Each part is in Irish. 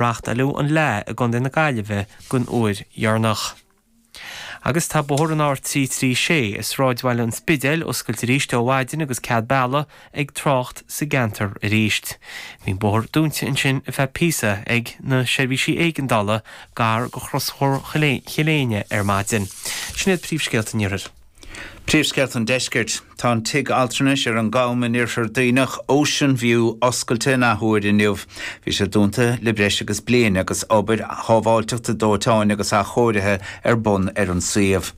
reachtáileadh an Fhleá i gContae na Gaillimhe don uair dheireanach. Agus tá bóthar an R336 i sráidbhaile an Spidéil oscailte arís ó mhaidin agus cead bealaigh ag trácht sa gceantar arís. Bhí an bóthar dúinte ansin ar feadh píosa ag na seirbhísí éigeandála gar do chrosbhóthar Choill Éinne ar maidin. Sin iad príomhscéalta an Iarthair. Príomhscéalta an Deiscirt. Tá an tigh altranais ar an gCam in Oirthear Duibhneach, Ocean View, oscailte in athuair inniu. Bhí sé dúnta le breis agus bliain agus obair shábháilteachta dóiteáin agus athchóirithe ar bun ar an suíomh.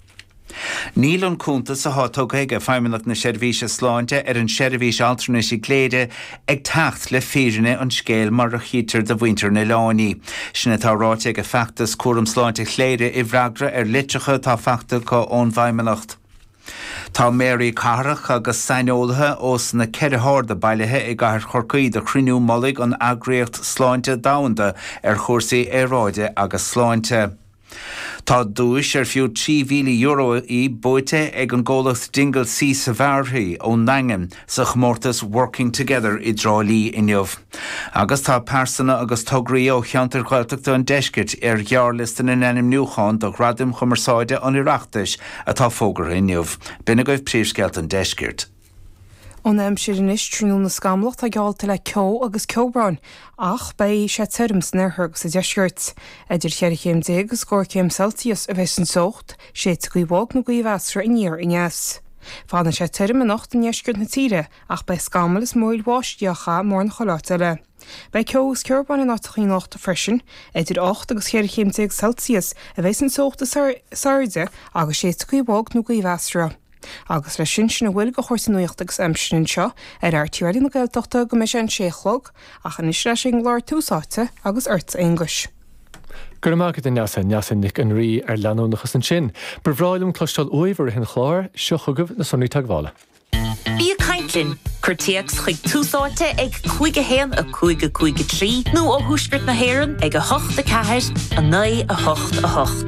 Níl an cuntas atá tugtha ag Feidhmeannacht na Seirbhíse Sláinte ar an seirbhís altranais i gCléire ag teacht le fírinne an scéil mar a chítear do mhuintir an oileáin í. Sin atá ráite ag an Feachtas Cúram Sláinte Chléire i bhfreagra ar litreacha atá faighte acu ón bhFeidhmeannacht. Tá méaraí cathrach agus saineolaithe ós na ceithre hairde bailithe i gcathair Chorcaí do chruinniú mullaigh an Eagraíocht Sláinte Domhanda ar chúrsaí aeráide agus sláinte. Tá duais ar fiú €3,000 í buaite ag an gcomhlacht Dingle Sea Safari ón nDaingean sa chomórtas Working Together i dTrá Lí inniu. Agus tá pearsana agus tograí ó cheantair Ghaeltachta an deiscirt ar ghearrliosta na n-ainmniúchán do Ghradaim Chumarsáide an Oireachtais atá fógartha inniu. B'in agaibh príomhscéalta an deiscirt. Ón aimsir anois tráthnóna scamallach atá geallta le ceo agus ceobrán ach beidh sé tirim san oirthear agus sa deisceart. Idir cheithre chéim déag agus scór céim Celsius a bheidh an teocht, séidfidh gaoth bhog nó gaoth mheasartha aniar aneas. Fanfaidh sé tirim anocht i ndeisceart na tíre ach beidh scamaill is mionbháisteach ann mórán chuile áit eile. Beidh ceo agus ceobrán in áiteacha anocht freisin. Idir ocht agus cheithre chéim déag Celsius a bheidh an teocht is airde agus séidfidh gaoth bhog nó gaoth mheasartha. agus leis sin sin a bhfuil de chúrsaí nuachta agus aimsire anseo ar RTÉ Raidió na Gaeltachta go mbeidh sé an sé a chlog ach anois ar ais ag an gclár Tús Áite agus ortsa a Aonghuis. Go raibh maith agat a Neasa, Neasa Nic an Rí ar leanúnachas ansin. Ba bhreá liom cloisteáil uaibh i rith an chláir. Seo chugaibh na sonraí teagmhála. Bí ag caint linn, cuir téacs chuig Tús Áite ag 5 1 5 5 3 nó ó thuaisceart na hÉireann ag 8 4 9 8 8.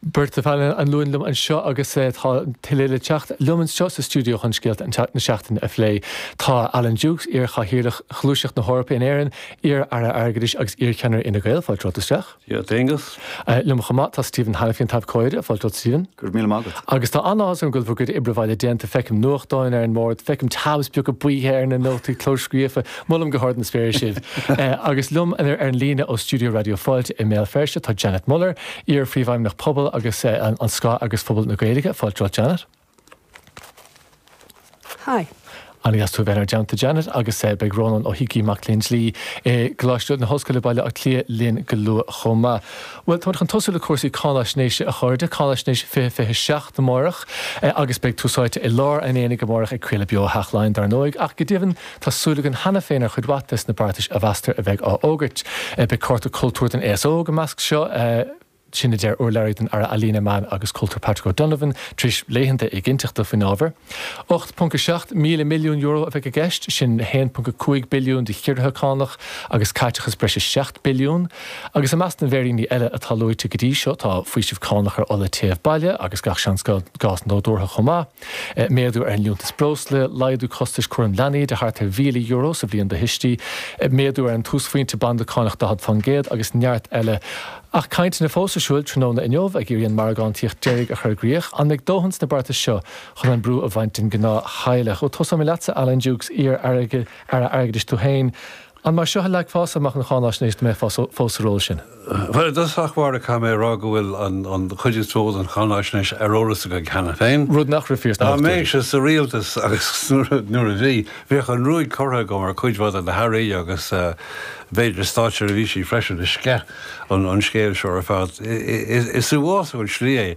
Beirt ar an bpainéal liom anseo agus tá tuilleadh le teacht liom anseo sa stiúideo chun scéalta na seachtaine a phlé. Tá Alan Dukes, iar-Chathaoirleach Ghluaiseacht na hEorpa in Éirinn, iar-Aire Airgeadais agus iar-Cheannaire Fhine Gael, fáilte romhat isteach. Dia duit, Aengus. Liom chomh maith tá Stephen Hanniffy, an t-abhcóide, fáilte romhat Stephen. Go raibh míle maith agat. Agus tá an-áthas orm go bhfuil bhur gcuid oibre bhaile déanta. Feicim nuachtáin ar an mbord, feicim tabs beaga buí ar na nótaí clóscríofa. Molaim go hard na spéire sibh. Agus liom ar an líne ó stiúideo Raidió Fáilte i mBéal Feirste tá Janet Muller, Iar-Phríomhfheidhmeannach Pobail agus anois ceannasaí Pobal na Gaeilge, fáilte romhat Janet. Hi. An-deas tú a bheith inár dteannta Janet agus beidh Rónán Ó hÍcí Mac Léinn Dlí i gColáiste na hOllscoile Baile Átha Cliath linn go luath chomh maith. Bhuel táimid chun tosú le cúrsaí cáinaisnéise a chairde, Cáinaisnéis 2026 amárach agus beidh Tús Áite i lár an aonaigh amárach ag craoladh beo ó Theach Laighean dar ndóigh ach go deimhin Tá súil againn cheana féin ar chuid mhaith des na beartais a mheastar a bheidh á fhógairt. Beidh cárta cultúir don aos óg i measc seo. Sin a deir urlabhraí don Aire Ealaíne, Meán agus Cultúir Patrick O'Donovan tar éis laethanta éiginnteachta faoin ábhar. 8.7 míle milliún euro a bheidh i gceist, sin 1.5 billiún de chiorruithe cánach agus caiteachas breise 7 billiún. Agus i measc na bhféiríní eile atá luaite go dtí seo tá faoiseamh cánach ar ola téimh baile agus gach seans gás nádúrtha chomh maith. Méadú ar an Liúntas Breosla, laghdú costais cúraim leanaí de thart ar €1,000 sa bhliain do thuistí, méadú ar an túsphointe banda cánach 40% agus neart eile. Ach cainteanna fós ar siúl tráthnóna inniu ag iarraidh an margántaíocht deiridh a chur i gcrích. An mbeidh dóthain sna beartais seo chun an brú a bhaint den ghnáth-theaghlach? Bhuel, tósóimid leatsa, Alan Dukes, iar-Aire Airgeadais tú féin. An mar seo a leagfása amach an cháinaisnéis dá mbeifeá fós sa ról sin? Bhuel, i dtosach báire caithfidh mé a rá go bhfuil an chuid is mó den cháinaisnéis ar eolas againn cheana féin. Rud nach raibh fíor sna hochtóidí. Dá mbeinnse sa rialtas agus nuair a bhí, bheadh an ruaig curtha agam ar chuid mhaith de na hAirí agus b'fhéidir státseirbhísigh freisin a sceith an scéal seo ar fad. Is uafásach an tslí é